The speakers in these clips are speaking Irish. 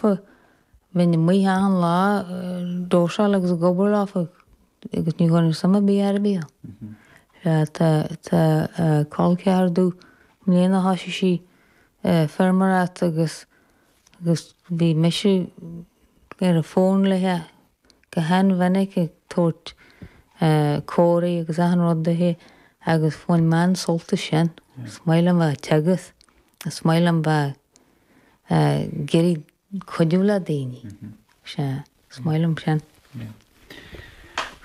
Bheinn amuigh achan lá ag dósáil agus ag obair lofa agus ní thabharfainn suim ar bith air a bheith ann. Tá col ceathair domh i mbliana, thosaigh sí feirmeoireacht agus bhí mise ar an bhfón léithe go han-mhinic ag tabhairt comhairlí agus achan rud duithi agus bhain mé an-sult as sin. Is maith liom a bheith ag teagasc, is maith liom bheith. ag iarraidh cuidiú le daoine. Sea, is maith liom sin.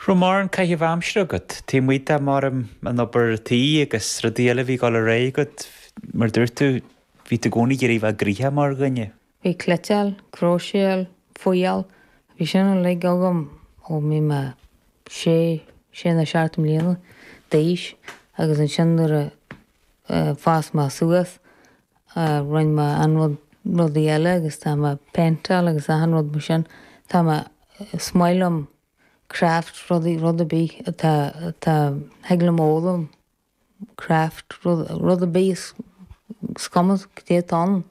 Raibh mórán caitheamh aimsire agat. Taobh amuigh de mar an obair tí agus rudaí eile a bhí ag dul ar aghaidh agat, mar a dúirt tú, bhí tú i gcónaí ag iarraidh bheith gnoitheach mar dhuine. Bhí cleiteáil, cróiseáil, fuáil, bhí sin uilig agam ó bhí mé sé, sé nó seacht mbliana d'aois agus ansin nuair a fhás mé suas, Rinn mé an rud, rudaí eile agus tá mé ag péinteáil agus achan rud mar sin. Tá mé, is maith liom craft rudaí, rud ar bith atá, atá, thig liom a fhoghlaim craft, rud, rud ar bith is, is cuma caidé atá ann.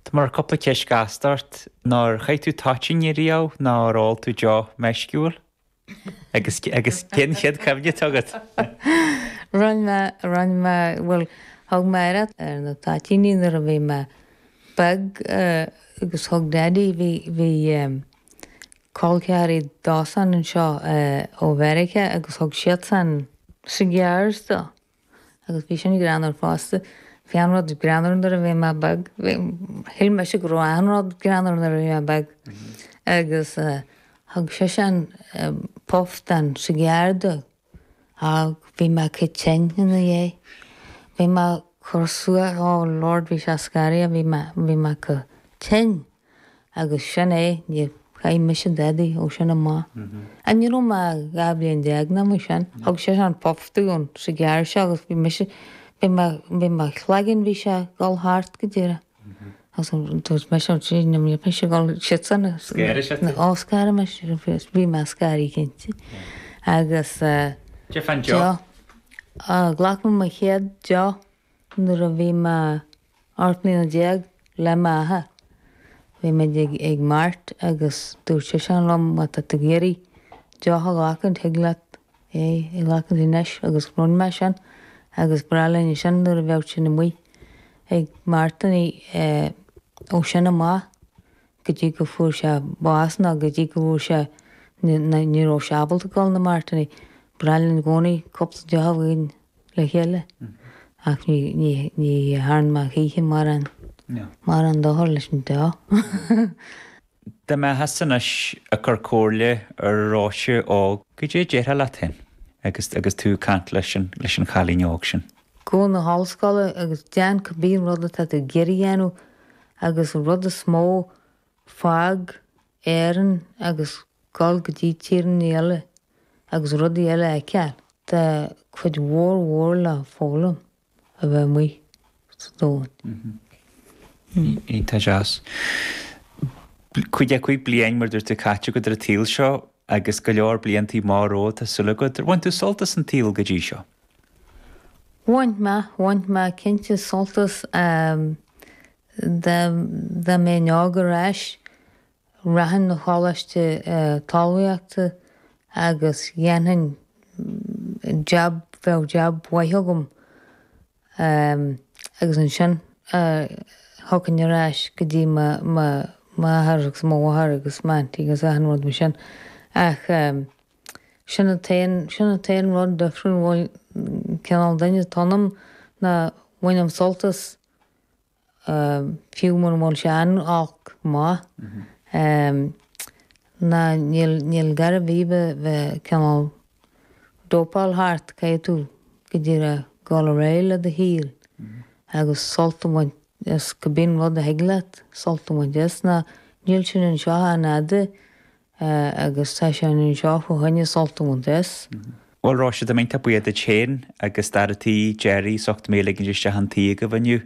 Tá mé ag cur cúpla ceist ghasta ort. Ar chaith tú toitíní riamh? Nó ar ól tú deoch meisciúil? Agus, agus cén chéad cuimhne atá agat? Rinn mé, rinn mé, bhuel, thug mé iarraidh ar na toitíní nuair a bhí mé beag agus thug Daddy, bhí, bhí col ceathairí dósan anseo ó Mheiriceá agus thug siadsan cigars dó. Agus bhí sin gránna fosta. Bhí achan rud greannmhar nuair a bhí mé beag. Shíl mise go raibh achan rud greannmhar nuair a bhí mé beag. Agus thug seisean puff den sigeár dom agus bhí mé iontach tinn ina dhiaidh. Bhí mé ag cur suas, oh Lord, bhí sé scary, bhí mé, bhí mé iontach tinn. agus sin é, níor chaith mise dadaí ó sin amach. Ní raibh mé ach dhá bhliain déag ná mar sin. Thug seisean puff den sigeár seo agus bhí mise, bhí mé, bhí mo chloigeann, bhí sé a dhul thart go díreach agus dúirt mise, ó Dia, níor mhiste mise a dhul siadsan a, Scanraigh sé thú? na, ó scanraigh sé mise, bhí sé scary cinnte agus eh, Caidé fán deoch. deoch, ghlac mé mo chéad deoch nuair a bhí mé, 18 mbliana le m'athair. Bhí muid ag mart agus dúirt seisean liom má tá tú ag iarraidh deoch a ghlacaint thig leat é a ghlacaint anois agus rinn mé sin agus ba bhreá linn é sin nuair a bheadh sinn amuigh ag martannaí ó sin amach. go dtí go fuair sé bás nó go dtí go bhfuair sé nó ní raibh sé ábalta dul na Máirtíní. Bhreá linn i gcónaí cúpla deoch againn le chéile ach ní thearn mé choíche mórán dochar leis an deoch. Dá mbeifeása anois ag cur comhairle ar Róise óg, goidé a déarfá leat féin agus tú ag caint leis an chailín óg sin? Gabh na hollscoile agus deán cibé rud atá tú ag iarraidh a dhéanamh agus an rud is mó, fág Éirinn agus gabh go dtí tíreannaí eile agus rudaí eile a fheiceáil. Tá cuid mhór mhór le foghlaim a bheith amuigh sa domhan. Iontach deas. Caoga a cúig bliain mar dúirt tú caite agat ar an tsaol seo agus go leor bliantaí maithe romhat tá súil agat. Ar bhain tú sult as an tsaol go dtí seo? Bhain mé, bhain mé cinnte sult as dá mbeinn óg ar ais. Rachainn na choláiste talmhaíochta agus dhéanfainn jab, bheadh jab mhaith agam agus ansin thiocfainn ar ais go dtí m'athair agus mo mháthair agus m'aintín agus achan rud mar sin ach. Sin an t-aon, sin an t-aon rud difriúil, bhuel, cineál duine atá ionam ná bainim sult as fiú mura bhfuil sé iontach maith. Ná níl, níl gar ar bith a bheith cineál dópáil thart, caithfidh tú go díreach a ghabháil ar aghaidh le do shaol agus sult a bhaint as cibé rud a thig leat sult a bhaint as ná níl sin anseo an fhad a agus tá sé anseo fá choinne sult a bhaint as. Bhuel, Róise, tá mé iontach buíoch duit féin agus d'fhear tí, Gerry, as ucht mé a ligint isteach chun tí agaibh inniu.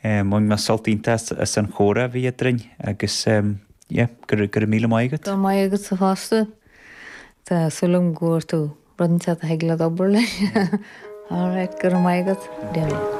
Bhain mé sult iontach as an chomhrá a bhí eadrainn agus, yeah, go raibh míle maith agat. Go raibh maith agatsa fosta. Tá súil agam go bhfuair tú rud inteacht a thig leat obair leis. All right, go raibh maith agat.